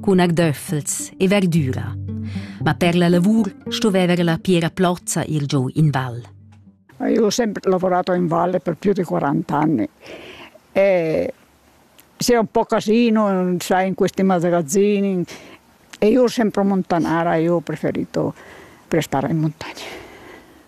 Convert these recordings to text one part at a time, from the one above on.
cun agdöffels e verdüra. Ma per la lavur stoveva la Piera Plozza ir giù in val. Io ho sempre lavorato in valle per più di 40 anni e sei un po' casino, sai, in questi magazzini e io ho sempre montanara, io ho preferito per stare in montagna.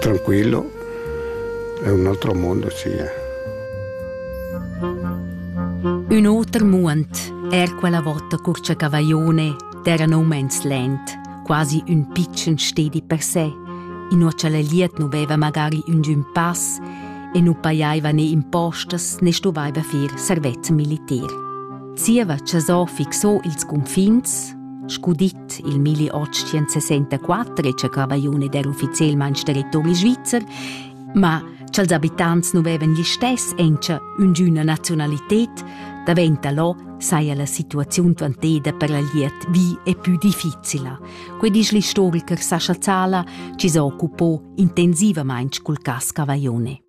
Tranquillo, è un altro mondo, sì. Un oter muond, er quella vota curcia cavaglione, d'era no mens lent, quasi un piccen stedi per sé, in uocha la liet nu veva magari un giun pass e nu paiaiva né impostas né stovaiva fir servez militar. Zieva cha so fixò ils cunfins, scu dit, Il milli otschien sesenta quattro e cavaione der ufficielmain territori svizzer, ma cha'ls abitants nu vevan gli stess encha üngüna nazionalited, daventa lo saja la situaziun dvanteda per la liet vi e pü difficila. Que disch l'istoriker Sascha Zala, chi s'occupo intensivamaing cul cas Cavaione.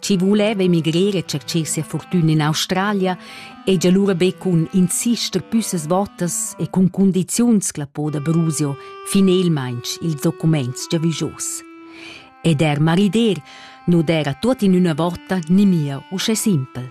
chi vuleva emigrir e tschercher sia fortüna in Australia, hegia lura be cun insister püssas votas e cun condiziuns clapò da Brusio finelmaing ils documents giavüschos. Ed er marider nu d'era tuot in üna vota nimia uschè simpel.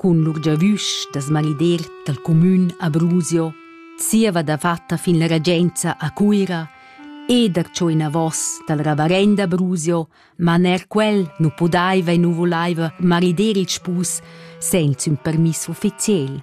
cun lur giavüsch da smalider dal cumün Abruzio, zieva dafatta fin la regenza a Cuira e darcho inavos dal ravarend Abruzio, ma ner quel nu pudaiva e nu vulaiva marider il spus senza ün permiss ufficiel.